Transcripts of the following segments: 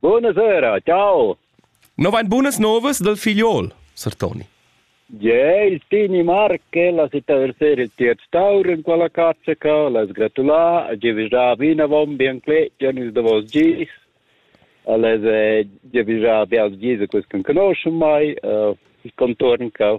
Buonasera, ciao. No vain bunas novas dal figliol, sar Toni. Ge, il Tini Marche, la città del ser il tier Staur in quella cazza ca, las gratulà, a givisà vinavon bien clet, Janis de vos gis, a les givisà bials gis, quels che conoscen mai, il contorn ca.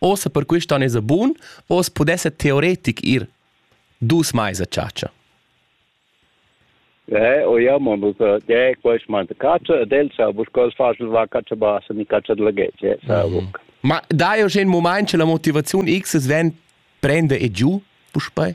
Ossa per quist on esa bun, oss pudessa teoretic ir dus mais a chatscha. Eh, o ja, man muss de quest man de caccia del sa bus cos facil va caccia basa ni caccia de legge sa buc. Ma dai jo in moment che la motivazione X es ven prende e giù, puspei?